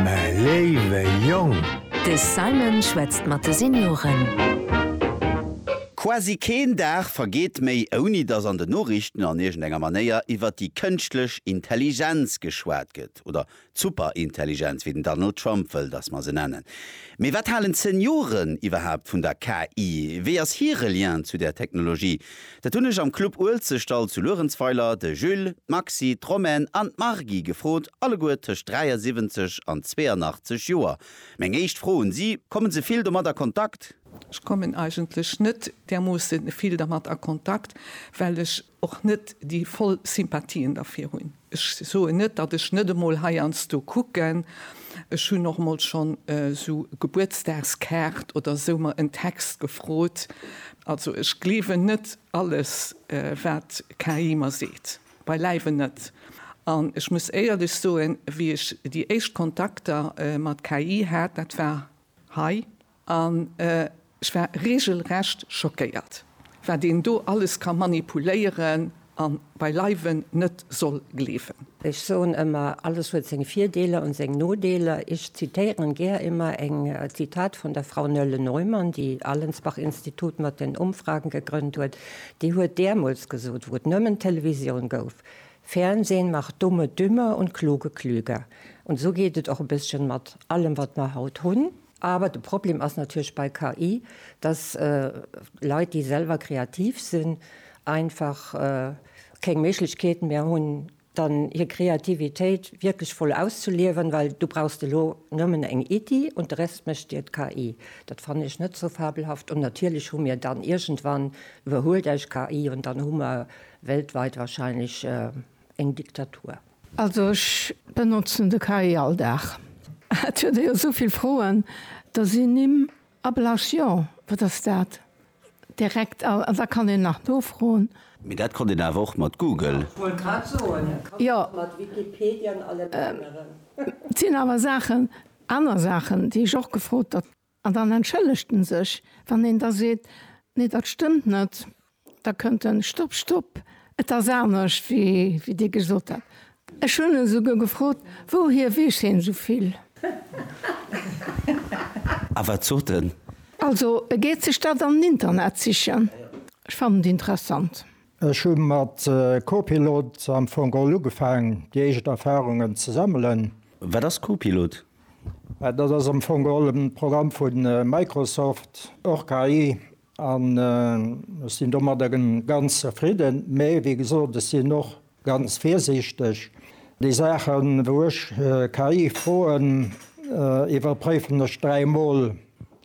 Mä léiwe Jong! De Simon schwätzt mat de Senioren. Quasi keen Dag vergeet méi, ouni datt an den Noriichten an iergendenger Manéier iwwer déi kënschtlech Intelligenz geschwat gëtt, oder d'Superintelligenz, wéi den Donald Trump wëll, datt mer se nennen. Mee wat halen d'Senioren iwwerhaapt vun der KI? Wéi ass hire Lien zu där Technologie? Dat hunn ech am Club Uelzechtdall zu Luerenzweiler de Jules, d'Maxi, d'Romaine an d'Margy gefrot, alleguer tëscht 73 an 82 Joer. Meng éischt Fro un si, Kommen se vill domat a Kontakt? Ech kommen eigentlech net därmoosse vill dermat a Kontakt, well ech och net déi voll Sympathien derfir hunn. Ech soen net, datt ech net emol heiansdo kucken. Ech hunn och emol schonn esou Gebuertsdagskaart oder esou mer en Text gefrot. Also ech gleewen net alles wat KI mer seet, beileiwen net. An ech muss éierlech soen, wéi ech déi éischt Kontakter mat KI hat, dat war hei, An ech war regelrecht schockéiert, wat een do alles ka manipuléieren a beileiwen net soll gleewen. Ech soen ëmmer, alles huet seng Virdeeler an seng Nodeeler. Ech zitéieren gär ëmmer eng Zitat vun der Frau Nölle Neumann, déi Allensbach Institut mat den Umfragen gegrënnt huet. Déi huet deemools gesot, wou et nëmmen Televisioun gouf, Fernsehen macht Dumme dümmer und Kluge klüger. An esou geet et och e bësschen mat allem, wat mer haut hunn. Awer de Problem ass natierlech bei KI, dass Leit, déi selwer kreativ sinn, einfach keng Méiglechkeet méi hunn, dann hir Kreativitéit wierklech voll auszeliewen, well du brauchst elo nëmmen eng Iddi an de Rest mécht dir d'KI. Dat fannen ech net sou fabelhaft. An natierlech hu mir dann iergendwann, iwwerhuelt eis KI an dann hu mer weltweit wahrscheinlech eng Diktatur. Also ech benotzen de KI all Dag. Et huet e jo esou vill Froen, da sinn Nimm abelaasch, jo wat ass dat, direkt a da kann een nach nofroen. Mee dat konnt een awer och mat Google. Jo, et sinn awer Saachen, aner Saachen, déi ech och gefrot. An dann entschëllegt en sech. Wann een da seet, Nee, dat stëmmt net, da kënnt en, Stopp, stopp, et ass anescht, wéi Dir gesot hat. Ech hunn e souguer gefrot, Wouhier weess hien esou vill? A wat sot en? Also, e geet sech dat am Internet sichen. Ech fannen et interessant. Ech hu mat Copilot am Fong all ugefaang, déi éischt Erfarungen ze sammelen. Wat ass Copilot? Dat ass am Fong all e Programm vu Microsoft, och KI, an ech sinn domadder ganz zefridden. Mee, wéi gesot, ech sinn och ganz virsiichteg. Déi Saachen, wou ech KI froen, iwwerpréifen ech dräi Mol,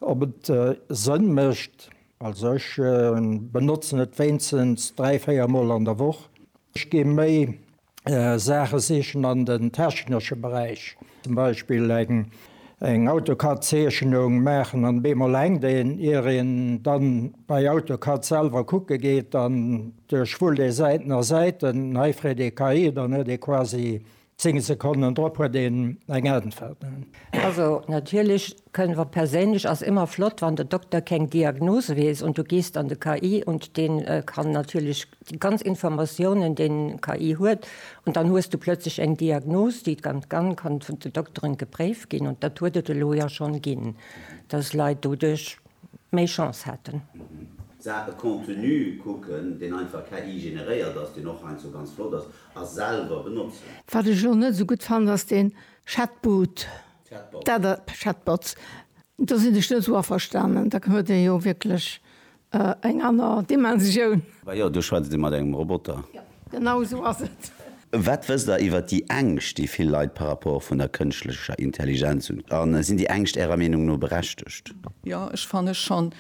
ob et Sënn mécht. Also ech benotzen et wéinstens dräi, véier Mol an der Woch. Ech géing méi Saache sichen an den technesche Beräich, zum Beispill eng Autocad Zeechnung maachen an op eemol hänkt een. Ier een dann bei Autocad selwer kucke geet an duerch wull ee Säiten a Säiten, hei freet ee KI, dann huet ee quasi Zéng Sekonnen drop huet een eng Äntwert. Also natierlech kënnen mer perséinlech, ass ëmmer flott wann de Dokter keng Diagnose weess und du gehst an de KI und deen kann natierlech déi ganz Informatiounen deen KI huet und dann hues du plötzlech eng Diagnose déi dann kann vun de Dokteren gepréift ginn und dat huet et elo jo schonn ginn dass Leit doduerch méi Chance haten. Saache Contenu kucken deen einfach KI generéiert ass, deen och heiansdo ganz flott ass a selwer benotzen. Wat ech elo net esou gutt fannen, ass deen Chatbot. Chatbots. Chatbots. Do sinn ech net esou averstanen. Da huet dee jo wierklech eng aner Dimensioun. Bah jo, do schwätzt ee mat engem Roboter. Jo, genau esou ass et. Wat wësst Der iwwert déi Ängscht, déi vill Leit par rapport vun der kënschtlecher Intelligenz hunn? A sinn déi Ängscht Ärer Meenung no berechtegt? Jo, ech fanne schonn,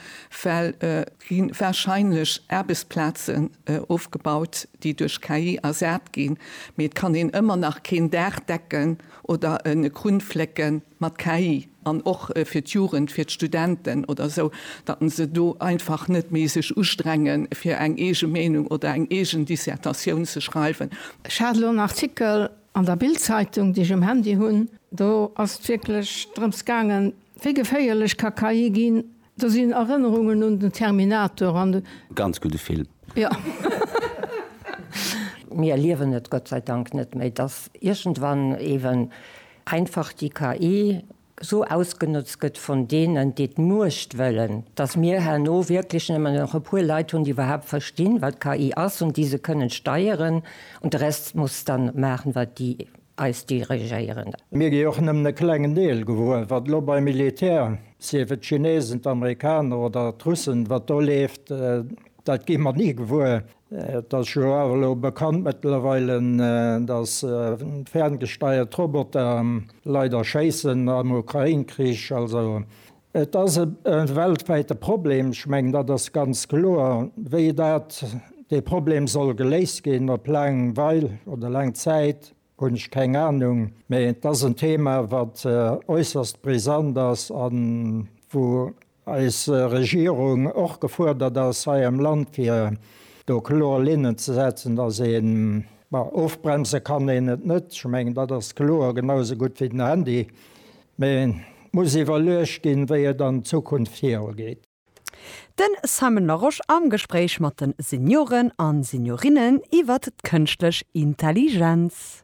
well et gi warscheinlech Aarbechtsplazen, ofgebaut, déi duerch KI ersat ginn, mee et kann een ëmmer nach keen Daach decken oder e Krunn flécke mat KI. An och fir d'Jugend, fir d'Studenten oder esou, datt en se do einfach net méi sech ustrenge fir eng eege Meenung oder eng eegen Dissertatioun ze schreiwen. Ech hat elo en Artikel an der Bild-Zeitung, déi ech um Handy hunn, do ass et wierklech drëms gaangen, wéi geféierlech ka KI ginn, Do sinn Erënnerungen un den Terminator an de. Ganz gudde Film. Jo. Mir erliewen et Gott sei Dank net méi, dass iergendwann eeben einfach déi KI esou ausgenotzt gëtt vun deenen, déi d'Muecht wëllen, dass mir herno wierklech nëmmen nach e puer Leit hunn, déi iwwerhaapt verstinn, wat KI ass, an déi se kënnen steieren, an de Rest muss dann maachen, wat déi. eis dirigéieren. Mir gi och nëmmen e klengen Deel gewuer, wat elo beim Militär, sief et d'Chinesen, d'Amerikaner oder d'Russen, wat do leeft, dat gi mer ni gewuer. Et ass jo awer elo bekannt mëttlerweile, datt ferngesteiert Roboter Leit erschéissen am Ukrain-Krich. Also Et ass e weltwäite Problem, ech mengen, dat ass ganz kloer. Wéi dat, dee Problem soll geléist ginn, op laang Weil oder laang Zäit, hunn ech keng Anung. Mee et ass en Thema, wat äusserst brisant ass a wou eis Regierung och gefuerdert ass hei am Land, fir do kloer Linnen ze setzen, dass een, bon, ofbremse kann een et net, ech mengen, dat ass kloer, genausou gutt wéi den Handy. Mä et muss iwwerluecht ginn, wéi et an Zukunft viru geet. Den Simon Larosche am Gespréich mat de Senioren a Seniorinnen iwwert d'Kënschtlech Intelligenz.